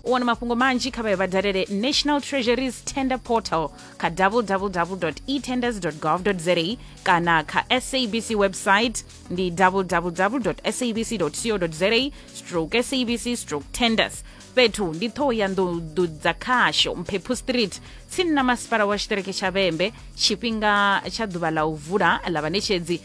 u wana mafhungo manzhi kha vhayo vha dalele national treasuries tender portal kha www etenders gov za kana kha sabc website ndi www sabc co za stroke sabc stroke tenders fhethu ndi ṱhoho ya nḓuḓu dza khasho mphephu street tsini na masipala wa tshiṱereke tsha vhembe tshifhinga tsha ḓuvha ḽa u vula ḽa vhaṋetshedzi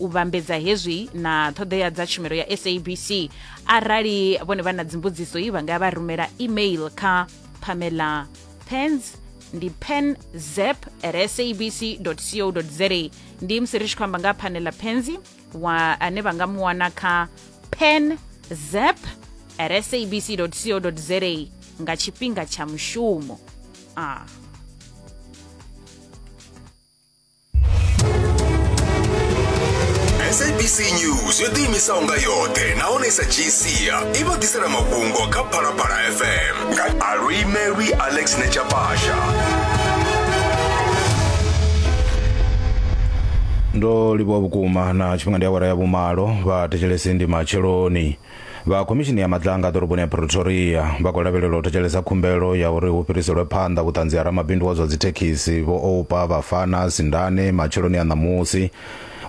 u vhambedza hezwi na ṱhoḓea dza tshumelo ya sabc arali vhone vha na dzimbudziso i vha nga vha rumela email kha pamela pens ndi pen zep at sabc co za ndi musi ri tshi khou amba nga phanela penzi wa ane vha nga mu wana kha pen zep at sabc co za nga tshifhinga tsha mushumo ah. sabc news yo ḓiimisaho nga yoṱhe nahone i sa dzhii sia i vha ḓisela mafhungo kha phalaphala fm nga aluimelwi alex nechapasha ndo livhuwa vhukuma na tshifhinga ndi awara ya vhumalo vha thetshelesi ndi matsheloni vha khomishini ya madlanga ḓoroboni ya pretoria vha khou lavhelelwa u thetshelesa khumbelo ya uri hu fhiriselwe phanḓa vhuṱanzi ha ramabindu wa zwa dzithekhisi vho oupa vhafana sindane matsheloni a ṋamusi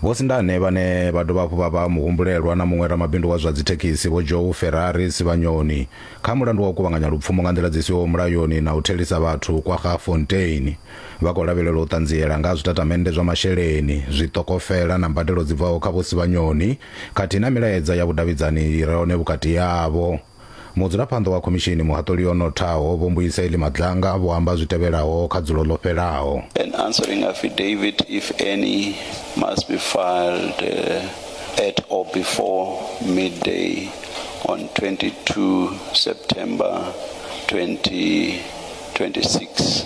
vho sindane vhane vha dovha hafhu vha vha muhumbulelwa na muṅwe ramabindu wa zwa dzithekhisi vho joe ferrari sivhanyoni kha mulandu wa u kuvhanganya lupfumo nga nḓila dzi siho mulayoni na u thelisa vhathu kwa ga fontein vha khou lavhelelwa u ṱanziela nga ha zwitatamennde zwa masheleni zwitokofela na mbadelo dzi bvaho kha vho sivhanyoni khathihi na milaedza ya vhudavhidzani i re hone vhukati havho. Mudzulaphanḓa wa khomishini muhaṱuli o nothaho Vho Mbuyiseli Madlanga vho amba zwi tevhelaho kha dzulo ḽo fhelaho. An answering affidavit, if any, must be filed at or before midday on 22 September 2026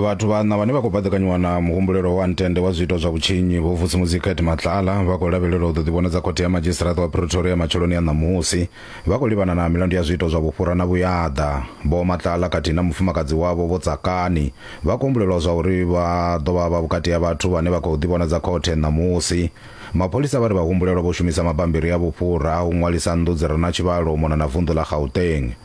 vhathu vhaṋa vhane vha khou baḓekanyiwa na muhumbulelo wa ntende wa zwiito zwa vhutshinyi vho vusi muziket matlala vha khou lavhelelwa u ḓo ḓivhonadza khothe ya madzhisiṱiraṱa wa pretoria matsheloni a ṋamusi vha khou livhana na milandu ya zwiito zwa vhufhura na vhuyaḓa vho matlala khathihi na mufumakadzi wavho vho tsakani vha khou humbulelwa zwa uri vha ḓo vha vha vhukati ha vhathu vhane vha khou ḓivhonadza khothe ṋamusi mapholisa vha ri vhahumbulelwa vho shumisa mabambiri a vhufhura a u ṅwalisa nnḓu dzi re na tshivhalo u mona na vunḓu ḽa gauteng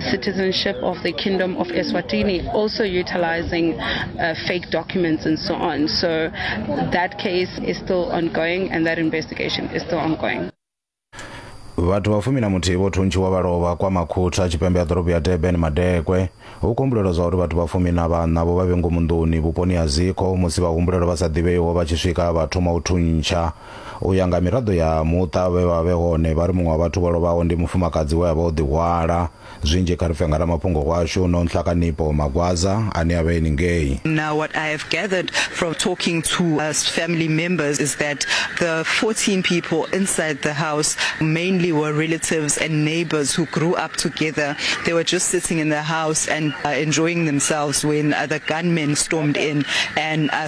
citizenship of the Kingdom of Eswatini, also utilizing uh, fake documents and so on. So that case is still ongoing and that investigation is still ongoing. vhathu vha fumi na muthihi vho thuntshiwa vha lovha kwa makhutha tshipembe ya ḓorobo ya durban madekwe hu kumbulelwa zwa uri vhathu vha fumi na vhanna vho vha vhe ngomu nḓuni vhuponi ha zikho musi vhahumbulelwa vha sa ḓivheiho vha tshi swika vha thoma u thuntsha U ya nga miraḓo ya muṱa vhe vha vhe hone, vha ri muṅwe wa vhathu vho lovhaho ndi mufumakadzi we a vha o ḓihwala. Zwinzhi kha ri pfe nga ramafhungo washu Nonhla Kanipo Magwaza ane a vha e ningei. Now what I have gathered from talking to us family members is that the 14 people inside the house mainly were relatives and neighbours who grew up together. They were just sitting in the house and enjoying themselves when the gunmen stormed in and